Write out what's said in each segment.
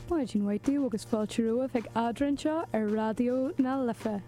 Maidin mhaith daoibh agus fáilte romhaibh ag Adhmhaidin anseo ar Raidió na Life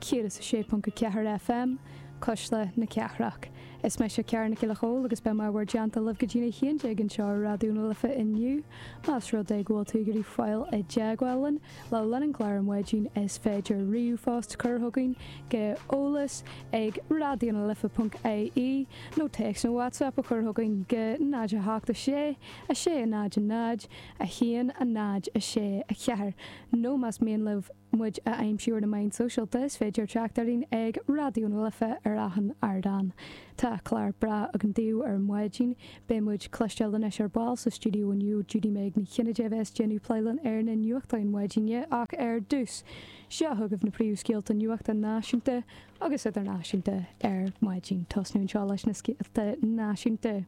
106.4 FM, Cuisle na Cathrach. Is mise Ciara Nic Giolla Chomhaill agus beidh mé i bhur dteannta go dtí a 11 anseo ar Raidió na Life inniu. Más rud é go bhfuil tú ag iarraidh fáil i dteagmháil linn, Le linn an chláir ar maidin is féidir ríomhphost a chur chugainn go eolas ag raidió na life ponc ie nó téacs nó WhatsApp a chur chugainn go 0 8 6 6 0 0 1 0 6 4 nó más mian libh muid a aimsiú ar na meáin shóisialta is féidir teacht orainn ag Raidió na Life ar achan ardán. Tá clár breá againn daoibh ar maidin. Beidh muid ag cloisteáil anois ar ball sa stiúideo inniu, Judy-Meg Ní Chinnéide a bheas ag déanamh plé linn ar na nuachtáin maidine ach ar dtús, seo chugaibh na príomhscéalta nuachta náisiúnta agus idirnáisiúnta ar maidin. Ag tosnú anseo leis na scéalta náisiúnta.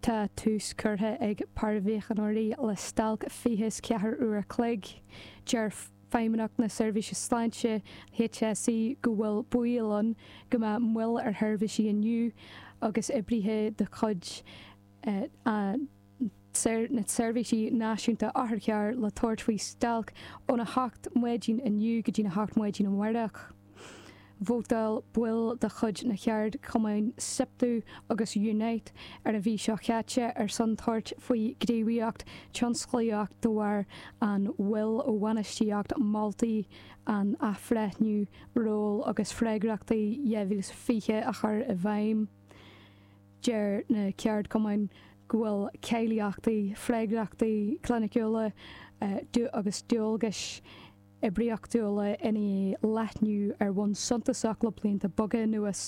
Tá tús curtha ag paraimhíochaineoirí le stailc fiche 's ceathair uair a chloig. Deir. Feidhmeannacht na Seirbhíse Sláinte, HSE, go bhfuil baol ann go mbeadh moill ar sheirbhísí inniu agus oibrithe de chuid na Seirbhíse Náisiúnta Otharcharr le tabhairt faoi stailc óna 8 maidin inniu go dtí a 8 maidin amárach. Vótáil baill de chuid na ceardchumainn Siptu agus Unite ar an mhí seo caite ar son tabhairt faoi ghníomhaíocht tionsclaíoch de bharr an mhoill ó bhainistíocht moltaí an athbhreithniú ról agus freagrachtaí 2020 a chur i bhfeidhm. Deir na ceardchumainn go bhfuil cáilíochtaí, freagrachtaí cliniciúla agus dualgais, oibríochtúla i ndiaidh leathnú ar bhonn suntasach le blianta beaga anuas.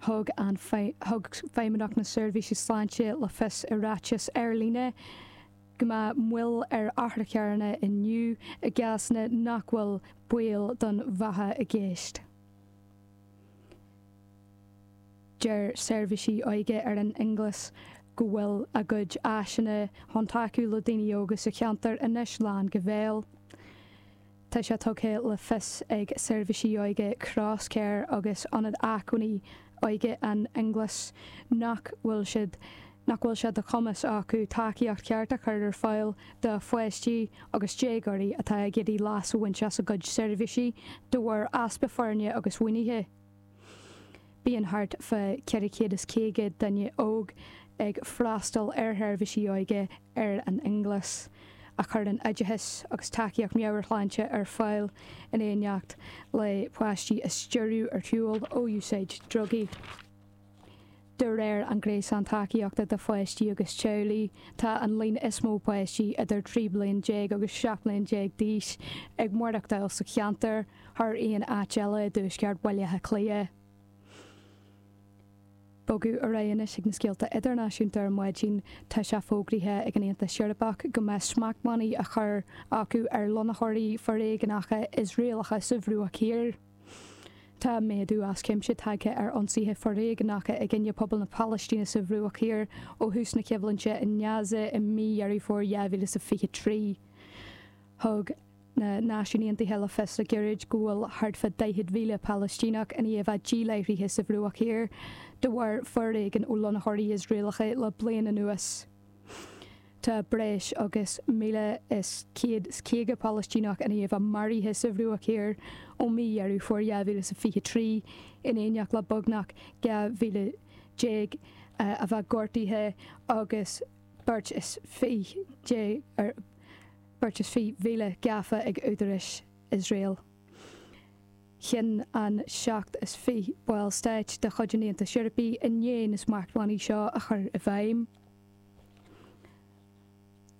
Thug an thug Feidhmeannacht na Seirbhíse Sláinte le fios i ráiteas ar líne go mbeadh moill ar otharcharranna inniu i gcásanna nach bhfuil baol don bheatha i gceist. Deir seirbhísí óige i bhFionnghlas go bhfuil a gcuid áiseanna chun tacú le daoine óga sa cheantar anois lán go béal. Tá sé tugtha le fios ag Seirbhísí Óige Crosscare agus Ionad Acmhainní Óige Fhionnghlas nach bhfuil siad nach bhfuil sé de chumas acu tacaíocht cheart a chur ar fáil do pháistí agus déagóirí atá ag iarraidh leas a bhaint as a gcuid seirbhísí de bharr easpa foirne agus mhaoinithe. Bíonn thart fá 450 duine óg ag freastal ar sheirbhísí óige i bhFionnghlas, a chuireann oideachas agus tacaíocht meabhairshláinte ar fáil in éineacht le páistí a stiúradh ar shiúl ó úsáid drugaí. De réir an Gréasán Tacaíochta do Pháistí agus Teaghlaigh, tá an líon is mó páistí idir 13 bliain agus 17 bliain d'aois ag maireachtáil sa cheantar thar aon áit eile i dtuaisceart Bhaile Átha Cliath. Bogadh ar aghaidh anois ag na scéalta idirnáisiúnta ar maidin. Tá sé fógraithe ag an Aontas Eorpach go mbeidh smachtbhannaí á chur acu ar lonnaitheoirí foréigeanacha Iosraelacha sa Bhruach Thiar. Tá méadú as cuimse tagtha ar ionsaithe foréigneacha i gcoinne pobal na Palaistíne sa Bhruach Thiar ó thús na coimhlinte in Gaza i mí Dheireadh Fómhair 2023. Thug na Náisiúin Aontaithe le fios le gairid go bhfuil thart fá 40,000 Palaistíneach i ndiaidh a bheith díláithrithe sa Bhruach Thiar de bharr foréigean ó lonnaitheoirí Iosraelacha le bliain anuas. Tá breis agus 1,150 Palaistíneach i ndiaidh a bheith maraithe sa Bhruach Thiar ó mhí Dheireadh Fómhair 2023, in éineacht le beagnach 12,000 a bheith gortaithe agus beirt is fiche mhíle gafa ag údaráis Iosrael. chinn an seacht is fiche ball stáit de chuid an Aontais Eorpaigh inné na smachtbhannaí seo a chur i bhfeidhm.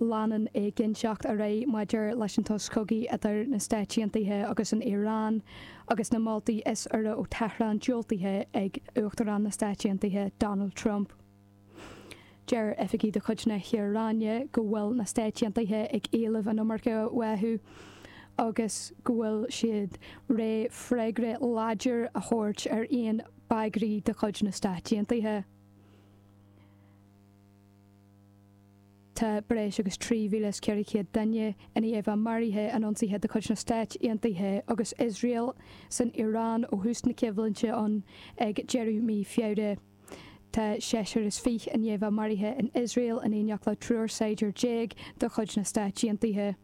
Leanann éiginnteacht ar aghaidh maidir leis an tsos cogaidh idir na Stáit Aontaithe agus an Iaráin agus na moltaí is úire ó Tehran diúltaithe ag Uachtarán na Stáit Aontaithe Donald Trump. Deir oifigigh de chuid na hIaráine go bhfuil na Stáit Aontaithe ag éileamh an iomarca uathu agus go bhfuil siad réidh freagra láidir a thabhairt ar aon bhagairtí de chuid na Stát Aontaithe. Tá breis agus 3,400 duine i ndiaidh a bheith maraithe in ionsaithe de chuid na Stáit Aontaithe agus Iosrael san Iaráin ó thús na coimhlinte ann ag deireadh mí Feabhra. Tá seisear is fiche i ndiaidh a bheith maraithe in Iosrael in éineacht le triúr saighdiúir déag de chuid na Stáit Aontaithe.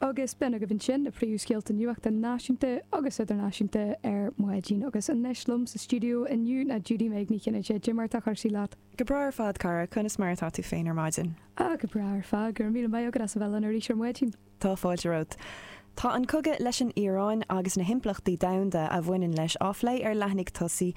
Agus b'in agaibh ansin na príomhscéalta nuachta náisiúnta agus idirnáisiúnta ar maidin. Agus anois liom sa stiúideo inniu ná Judy-Meg Ní Chinnéide. Cad é mar atá cúrsaí leat? Go breá ar fad, cara. Conas mar atá tú féin ar maidin? Ah, go breá ar fad. Go raibh míle maith agat as a bheith linn arís ar maidin. Tá fáilte romhat. Tá an cogadh leis an Iaráin agus na himpleachtaí domhanda a bhaineann leis á phlé ar leathanaigh tosaigh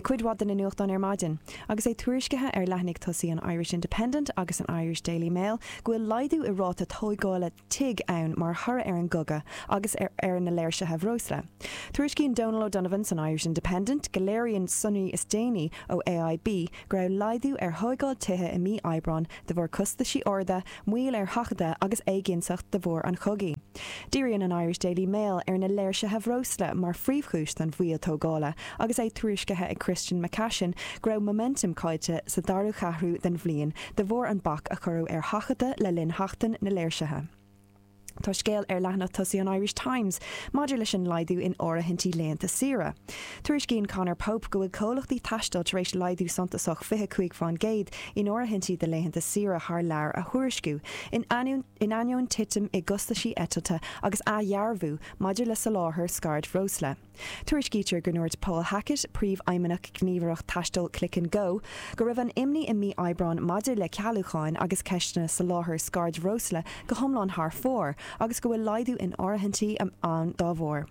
cuid mhaith de na nuachtáin ar maidin, agus é tuairiscithe ar leathanaigh tosaigh an Irish Independent agus an Irish Daily Mail go bhfuil laghdú i ráta tógála tigh ann mar thoradh ar an gcogadh agus ar na léirsithe bhreosla. Tuairiscíonn Donal O'Donovan san Irish Independent go léiríonn sonraí is déanaí ó AIB go raibh laghdú ar thógáil tithe i mí Aibreáin de bharr costaisí arda moill ar sheachadadh agus éiginnteacht de bharr an chogaidh. Díríonn an Irish Daily Mail ar na léirsithe bhreosla mar phríomhchúis don mhoill tógála agus é tuairiscithe ag Christian McCashin go raibh momentum caillte sa dara cheathrú den bhliain de bharr an bac a cuireadh ar sheachadadh le linn sheachtain na léirsithe. Tá scéal ar leathanach tosaigh an Irish Times maidir leis an laghdú in áirithintí laethanta saoire. Tuairiscíonn Conor Pope go bhfuil comhlachtaí taistil tar éis laghdú suntasach, 25 faoin gcéad, in áirithintí do laethanta saoire thar lear a thuairisciú, in ainneoin titim i gcostaisí eitilte agus athdhearbhú maidir le soláthar scairdbhreosla. Tuairiscítear go ndúirt Paul Hackett, Príomhfheidhmeannach Ghníomhaireacht Taistil Click and Go, go raibh an imní i mí Aibreáin maidir le cealúcháin agus ceisteanna soláthair scairdbhreosla go hiomlán thar fóir agus go bhfuil laghdú in áirithintí ann dá bharr.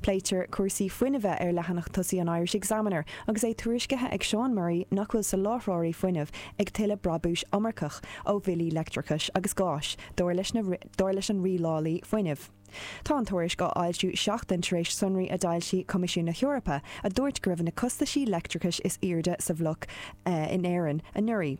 Pléitear cúrsaí fuinnimhe ar leathanach tosaigh an Irish Examiner agus é tuairiscithe ag Seán Murray nach bhfuil soláthróirí fuinnimh ag tuilleadh brabúis iomarcach ó bhillí leictreachais agus gáis, dar leis an rialálaí fuinnimh. Tá an tuairisc á foilsiú seachtain tar éis sonraí a d'fhoilsigh Coimisiún na hEorpa a dúirt go raibh na costaisí leictreachais is airde sa bhloc in Éirinn anuraidh.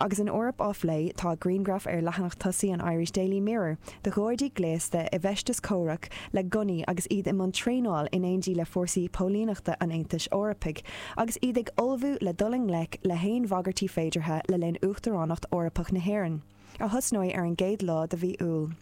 Agus an Eoraip á plé, tá grianghraf ar leathanach tosaigh an Irish Daily Mirror de ghardaí gléasta i bhfeisteas comhraic le gunnaí agus iad i mbun traenáil in éindí le fórsaí póilíneachta an Aontais Eorpaigh agus iad ag ullmhú le dul i ngleic le haon bhagairtí féideartha le linn Uachtaránacht Eorpach na hÉireann, a thosnóidh ar an gcéad lá de mhí Iúil.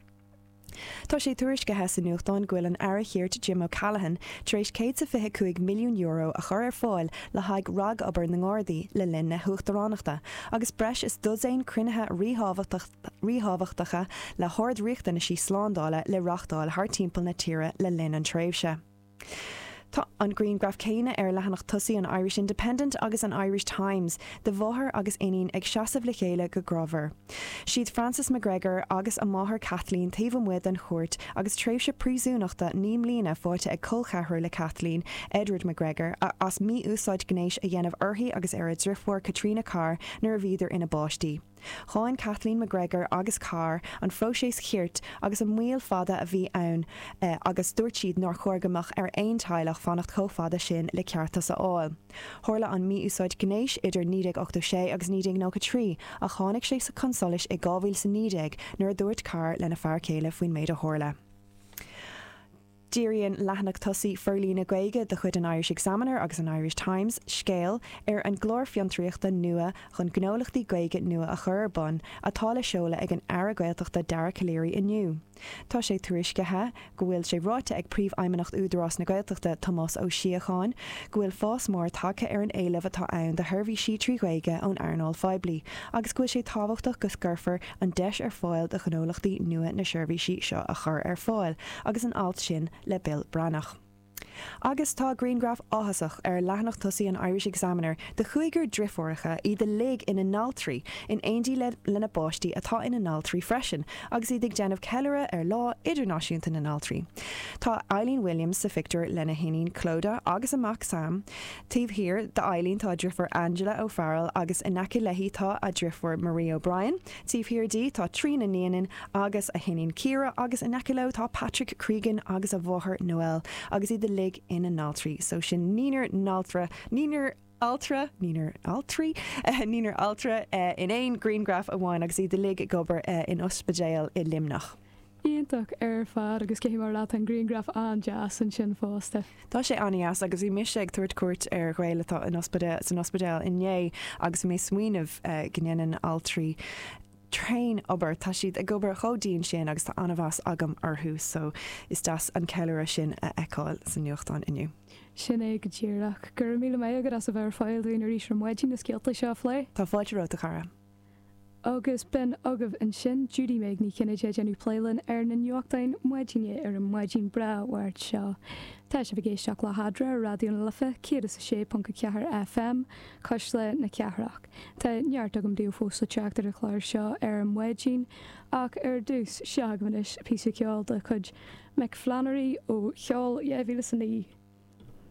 Tá sé tuairiscithe sa nuachtán go bhfuil an Aire Cirt Jim O'Callaghan tar éis céad sa fiche cúig milliún euro a chur ar fáil le haghaidh ragobair na nGardaí le linn na hUachtaránachta agus breis is dosaen cruinnithe ríthábhachtacha le hard-riachtanaisí slándála le reachtáil thar timpeall na tíre le linn an tréimhse. Tá an grianghraf céanna ar leathanach tosaigh an Irish Independent agus an Irish Times de mháthair agus iníon ag seasamh le chéile go grámhar. Siad Francis McGregor agus a máthair Kathleen taobh amuigh den chúirt agus tréimhse príosúnachta naoi mbliana faighte ag colcheathrar le Kathleen, Edward McGregor, as mí-úsáid gnéis a dhéanamh uirthi agus ar a driofúr Caitríona Carr nuair a bhíodar ina bpáistí. Cháin Kathleen McGregor agus Carr an próiseas cirt agus an moill fada a bhí ann agus dúirt siad nár chóir go mbeadh ar aon teaghlach fanacht chomh fada sin le ceartas a fháil. Tharla an mí-úsáid gnéis idir 1986 agus 1993 ach tháinig sé chun solais i 2019 nuair a dúirt Carr lena fear céile faoin méid a tharla. Díríonn leathanach tosaigh forlíonadh Gaeilge de chuid an Irish Examiner agus an Irish Times, 'Scéal', ar an gclár fiontraíochta nua chun gnólachtaí Gaeilge nua a chur ar bun, atá le seoladh ag an Aire Gaeltachta Dara Calleary inniu. Tá sé tuairiscithe go bhfuil sé ráite ag Príomhfheidhmeannach Údarás na Gaeltachta, Tomás Ó Síocháin, go bhfuil fás mór tagtha ar an éileamh atá ann do sheirbhísí trí Ghaeilge ón earnáil phoiblí agus go bhfuil sé tábhachtach go gcuirfear an deis ar fáil do ghnólachtaí nua na seirbhísí seo a chur ar fáil agus an alt sin le Bill Breathnach. Agus tá grianghraf áthasach ar leathanach tosaigh an Irish Examiner de chúigear driofúracha, iad uilig ina n-altraí, in éindí lena bpáistí atá ina n-altraí freisin, agus iad ag déanamh ceiliúradh ar Lá Idirnáisiúnta na nAltraí. Tá Eileen Williams sa phictiúr lena hiníon Clodagh agus a mac Sam. Taobh thiar d'Eileen tá a driofúr Angela, O'Farrell, agus in aice léi tá a driofúr Marie, O'Brien. Taobh thiar di tá Tríona, Neenan, agus a hiníon Ciara agus in aice leo tá Patrick, Cregan, agus a mháthair Noelle agus iad uilig ina n-altraí so sin naoinar n-altra, naoinar altra, naoinar altraí, naoinar altra in aon ghrianghraf amháin agus iad uilig ag obair in ospidéal i Luimneach. Iontach ar fad agus ceapfaidh mé leat an grianghraf an-deas ansin fosta. Tá sé an-dheas agus bhí mise ag tabhairt cuairt ar ghaol atá in ospidéal, san ospidéal inné agus bhí mé ag smaoineamh go ndéanann altraí tréan obair, tá siad ag obair chomh dian sin agus tá an-mheas agam orthu so is deas an ceiliúradh sin a fheiceáil sa nuachtán inniu. Sin é go díreach. Go raibh míle maith agat as a bheith ar fáil dúinn arís ar maidin na scéalta seo a phlé. Tá fáilte romhat a chara. Agus b'in agaibh ansin, Judy-Meg Ní Chinnéide ag déanamh plé linn ar na nuachtáin maidine ar an maidin bhreá Mháirt seo. Tá sibh ag éisteacht le hAdhradh ar Raidió na Life 106.4 FM, Cuisle na Cathrach. Tá neart agam daoibh fós le teacht ar an chlár seo ar an maidin, ach ar dtús, seo agaibh anois píosa ceoil de chuid Mick Flannery ó sheol 2009.